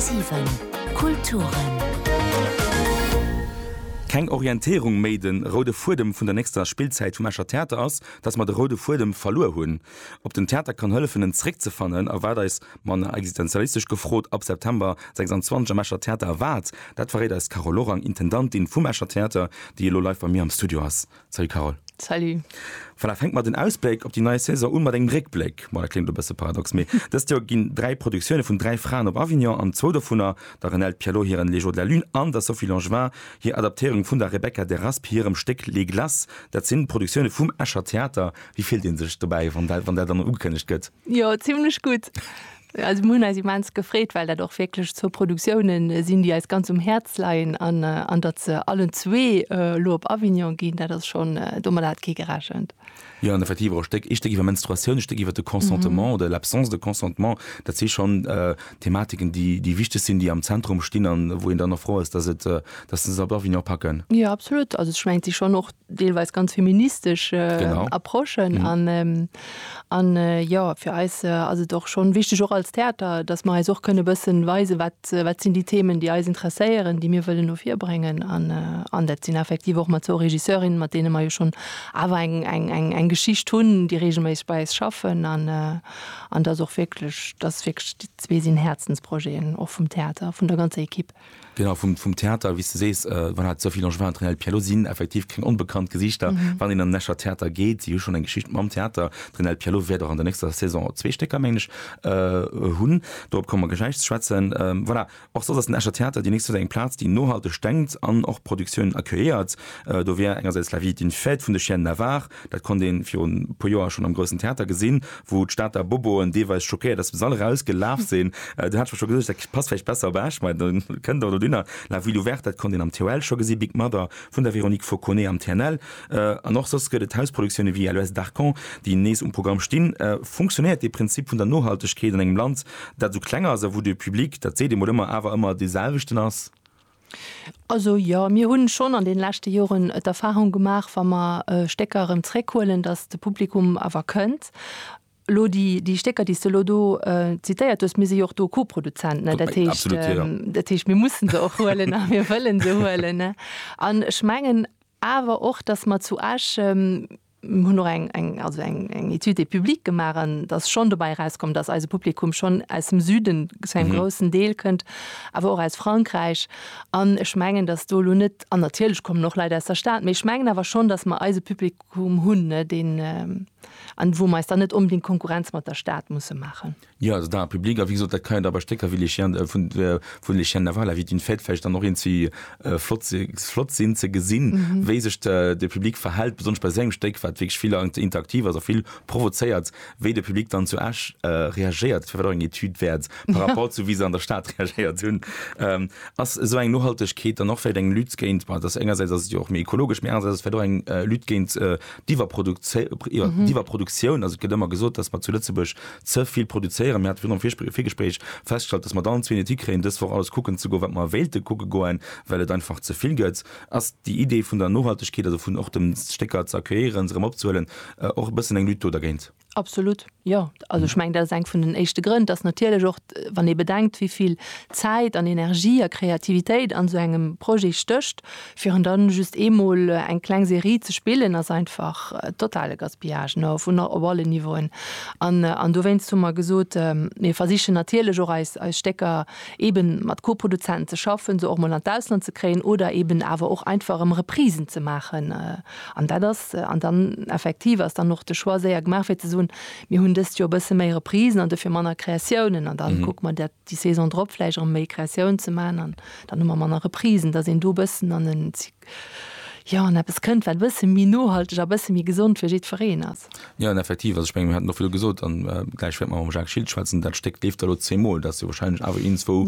10,7 Kulturen. Keng Orientéierung méi Den roude Fuedem vun der nächster Spillzäit vum Escher Theater ass, datt mer de roude Fuedem verluer hunn. Ob den Theater kann hëllefen en zréckzefannen a wat eis, manner existenzialistesch gefrot, ab September 26 am Escher Theater erwaart, dat verréit eis d'Carole Lorang, Intendantin vum Escher Theater, déi elo live bei mir am Studio ass. Salut Carole. Salut. Voilà, fänke mer den Ausbléck op déi nei Saison un mat engem Réckbléck. Bon, dat kléngt e bësse paradox, mee dëst Joer ginn dräi Produktioune vun dräi Fraen op Avignon an zwou dovunner, der Renelde Pialot hiren Les jours de la lune an der Sophie Langevin hir Adaptéierung vun der Rebecca Deraspe hirem Stéck Les glaces, dat sinn Produktioune vum Escher Theater. Wéi fillt ee sech dobäi, wann dat, wann dat dann ugekënnegt gëtt? Jo, zimmlech gutt. Also mir hunn eis immens gefreet, well dat och wierklech zwou Produktioune sinn, déi eis ganz um Häerz leien. An an datt se allen zwee elo op Avignon ginn, dat ass schonn, domadder hat kee gerechent. Jo, an effektiv och e Stéck, ee Stéck iwwer Menstruatioun, e Stéck iwwer de Consentement oder l'absence de consentement. Dat si schonn Thematiken, déi déi wichteg sinn, déi am Zentrum stinn a wou een dann och frou ass, datt se se op Avignon packen. Jo, absolut. Also ech mengen, et si schonn och deelweis ganz feministesch Approchen an jo fir eis ass et och schonn wichteg och als Theater, datt mer eis och kënne bëssen weisen, wat sinn déi Themen, déi eis interesséieren, déi mir wëllen no vir bréngen. An dat sinn effektiv och mat zwou Regisseurinnen, mat deene mer jo schonn awer eng Geschicht hunn, déi reegelméisseg bei eis schaffen an datt och wierklech, datt wierklech déi zwee sinn Häerzensprojeten och vum Theater, vun der ganzer Equipe. Genau, vum, vum Theater, wéi s de sees, wann hat d'Sophie Langevin an d'Rénald Pialot sinn effektiv keng onbekannt Gesichter, wann een an den Escher Theater geet. Si hu schonn eng Geschicht mam Theater. D'Rénald Pialot wäert och an der nächster Saison zwee Stécker, mengen ech, hunn. Dorop komme mer gläich ze schwätzen. Voilà, och soss ass den Escher Theater déi nächst Zäit eng Plaz, déi nohalteg denkt an och Produktiounen accueilliert. Do wär engersäits La vie est une fête vun de Chiennes Navarre, Dat konnt ee virun e puer Joer schonn am Groussen Theater gesinn, wou d'Stater Boboen deelweis schockéiert, aus dem Sall eraus gelaf sinn. Do hat ech mer scho gesot, dat passt vläicht besser op Esch, mä da kënnt der elo dunner. La Ville Ouverte, dat konnt een am TOL scho gesinn, Big Mother vun der Véronique Fauconnet am TNL. An och soss gëtt et Hausproduktioune wéi LOS d'Arcon, déi nees um Programm stinn. Funktionéiert dee Prinzip vun der Nohaltegkeet an engem Land, dat esou kleng ass a wou de Public, dat seet ee mol ëmmer, awer ëmmer dee selwechten ass? Also jo, mir hunn schonn an den leschte Joren d'Erfahrung gemaach, wa mer Stécker erëm zréckhuelen, dass de Publikum awer kënnt. Lo déi, déi Stécker déi s de elo do zitéiert hues, mir si jo och do Co-Produzent, ne? Dat heescht, dat heescht mir mussen se och huelen a mir wëllen se huelen, ne? An ech mengen, Awer och, dass mer zu Esch, mir hunn och eng, eng, also eng, eng Étude de public gemaach an dass schonn dobäi erauskomm, dass eise Publikum schonn aus dem Süden zu engem groussen Deel kënnt, awer och aus Frankräich. An ech mengen, dass do elo net, an natierlech kommen och Leit aus der Stad, mee ech mengen awer schonn, dass mer eise Publikum hunn, deen, an wou mer eis dann net onbedéngt Konkurrenz mat der Stad musse maachen. Jo, also d'Art publique, a wéi gesot, dat kann jo da bei Stécker wéi Les Chiens de, vun, vun Les Chiens de Navarre, La vie d'une fête vläicht dann och eens wéi flott si, flott sinn ze gesinn, wéi sech de, de Public verhält, besonnesch bei esou engem Stéck, wat wierklech vill interaktiv ass a vill provozéiert, wéi de Public dann zu Esch reagéiert. Dat wär vläicht och eng Etüd wäert par rapport zu wéi se an der Stad reagéiert hunn. Ass esou eng Nohaltegkeet dann och vläicht eng Lutte géint, bon, et ass, engersäits ass et jo och méi ekologesch, mee anerersäits ass et vläicht och eng Lutte géint d'Iwwerprodukzéi, iwwer, d'Iwwerproduktioun. Also et gëtt ëmmer gesot, datt mer zu Lëtzebuerg ze vill produzéieren. Mir hate virun dem Virgespréich festgestallt, dass mer dann zwee Nötig kréien, dës Woch alles kucken ze goen, wat mer wéilte kucke goen, well et einfach ze vill gëtt. Ass déi Idee vun der Nohaltegkeet, also vun och dem Stécker ze accueillieren, se erëm opzehuelen, och e bëssen eng Lutte do dergéint? Absolut, jo. Also ech mengen, dat ass eng vun den éischte Grënn, dass natierlech och, wann ee bedenkt, wéi vill Zäit an Energie a Kreativitéit an esou engem Projet stécht, Fir en dann just eemol eng kleng Serie ze spillen ass einfach totale Gaspillage, no vun op alle Niveauen. An an dowéinst hu mer gesot, mir versichen natierlech och eis eis Stécker eeben mat Co-Produzenten ze schaffen, se och mol an d'Ausland ze kréien oder eeben awer och einfach erëm Reprisen ze maachen. An dat ass an dann effektiv ass dann och de Choix séier gemaach fir ze soen, mir hunn dëst Joer e bësse méi Reprisen an dofir manner Kreatiounen an da kucke mer dat déi Saison drop vläicht erëm méi Créatioun ze maachen an dann hu mer manner Reprisen, dass een do e bëssen an en Zyk, jo, an eppes kënnt, wat e bësse méi nohalteg a e bësse méi gesond fir jiddwereen ass. Jo, an effektiv, also ech menge mir haten och vill gesot, an gläich wäerte mer mam Jacques Schiltz schwätzen, dat Stéck leeft da elo zeemol, dat ass jo warscheinlech awer eent, wou.